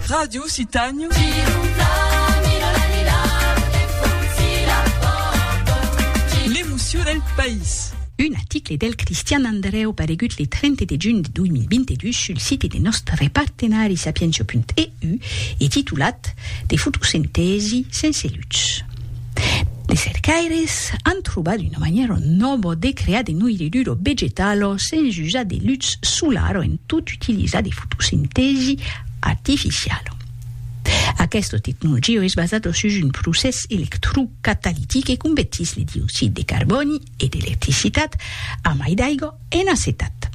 Radio Occitània. L'emocion del país. Un article del Cristian Andrèu paregut le 30 de junh de 2022 sul site de nòstre partenari Sapientia.eu e titulat De fotosintèsi sense lutz. De cercaires an trobat una manièra nòva de crear de noirridura vegetala sens usar de lutz solar o en tot utilizar de fotosintèsi artificiala. Aquesta tecnologia es basada sus un procès electrocatalitic e convertís le dioxid de carbòni e d'electricitat a mai d'aiga en acetat.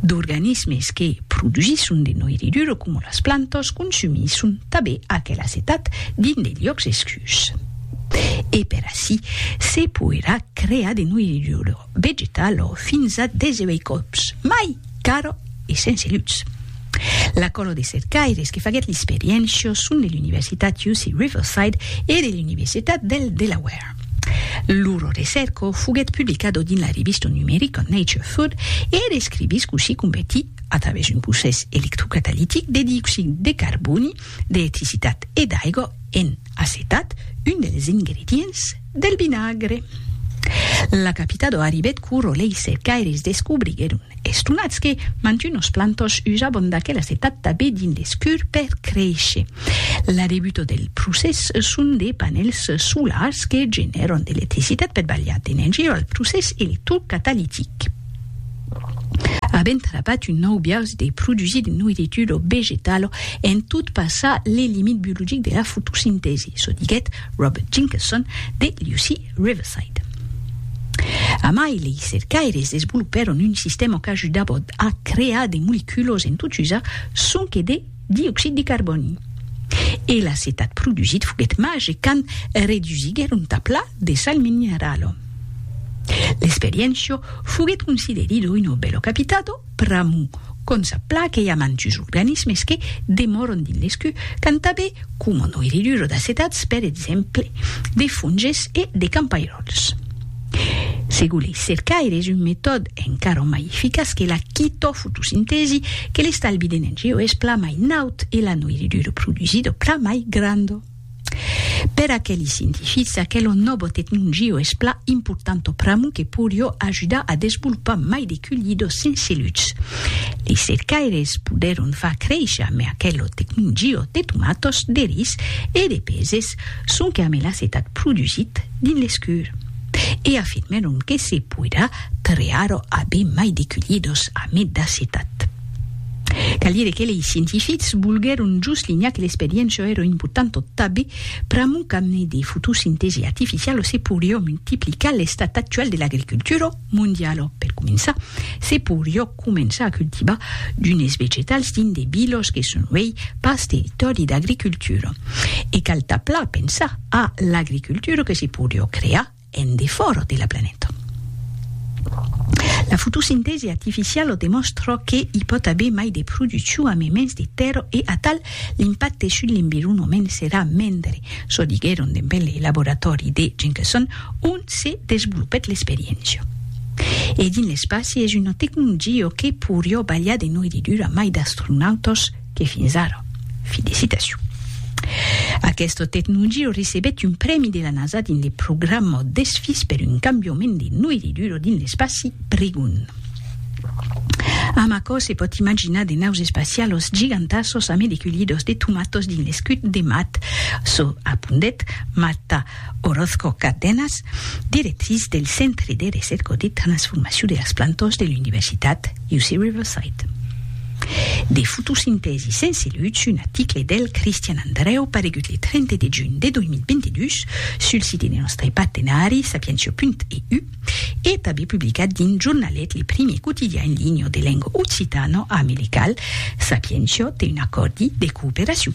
D'organismes que produsisson de noiritura coma las plantas consumisson tanben aquel acetat dins de liòcs escurs. E per ací se poirà crear de noiritura vegetala fins a 18 còps mai cara e sense lutz. La còla de cercaires que faguèt l'experiéncia son de l'Universitat UC Riverside e de l'Universitat del Delaware. Lor recèrca foguèt publicada dins la revista numerica Nature Food e er escrivís cossí convertir, a travèrs un procès electrocatalitic de dioxid de carbòni, d'electricitat e d'aiga en acetat, un dels ingredients del vinagre. La capitada arribèt quò rolei cercaires descobriguèron Estonats que mantunos plantos usabon d'aquelas etat tabé dins l'escur per créisher. La debuta del procès son de panèls solars que genèron de l'electricitat per balhar d'energia al procès electrocatalitic. Avent trapat un nòu biais de produsir de noiritura vegetala en tot passar le limit biologic de la fotosintèsi, çò diguèt Robert Jenkinson de l'UC. Riverside. Amai lei cercaires desvolopèron un sistèma qu'ajudava a crear de moleculas en tot usar sonque de dioxid de carbòni. E l'acetat produsit foguèt màgic quand redusiguèron tà pla de sal minerala. L'experiéncia foguèt considerida una bèla capitata pr'amor qu'ont sa plaque i a mantus organismes que demòron dins l'escu, qu'an tanben coma noiridura d'acetats, per exemple, de fonges e de campairòls. Segon lei cercaires, un metòde encara mai eficaç que la quitofotosintèsi, que l'estalvi d'energia es plan mai naut e la noiridura produsida plan mai granda. Per aqueli scientifics, aquelo novo tecnungiu es pla importanto pramu que porió ajudar a desvolopar mai de cullidos sense luts. Li cercaires podèron far créisher mai aquelo tecnungiu de tomatos, de ris e de peses sonque amé l'acetat produsit dins l'escur. E afirmèron que se poirà trear a ben mai de cullidos amé d'acetat. Cal dire que lei scientifics volguèron just linhar que l'experiéncia èra importanta tanbe pr'amor qu'amne de fotosintesi artificiala se poiriá multiplicar l'estat actual de l'agricultura mondiala. Per començar, se poiriá començar a cultivar d'unes vegetals dins de vilas que son uèi pas territòri d'agricultura. E cal tanpla pensar a l'agricultura que se poiriá crear en defòra de la planeta. La fotosintèsi artificiala o demòstra que i pòt aver mai de produccion a memens de tèrra e atal l'impacte sus l'environament serà mendre, çò diguèron dempent le laboratòri de Jenkinson ont se desvolopèt l'experiéncia. E dins l'espaci es una tecnologia que poiriá balhar de noiridura mai d'astronautas que fins ara. Felicitacion. Aquesta tecnologia recebèt un prèmi de la NASA dins le programa d'esfís per un cambiament de noiridura dins l'espaci Prigón. Amb aquò se pòt imaginar de naus espacialas gigantasas a medecullidas de tomatas dins l'escut de Mat, çò apondet Mata Orozco Cárdenas, directrice del Centre de Recérca de Transformacion de las Plantas de l'Universitat UC Riverside. De fotosintèsi sense lutz, un article del Cristian Andreu paregut le 30 de junh de 2022 sul site de nòstre partenari sapientia.eu e tanben publicat dins Jornalet, le primier quotidian en linha de lenga occitana, amirical, Sapientia té un acòrdi de cooperacion.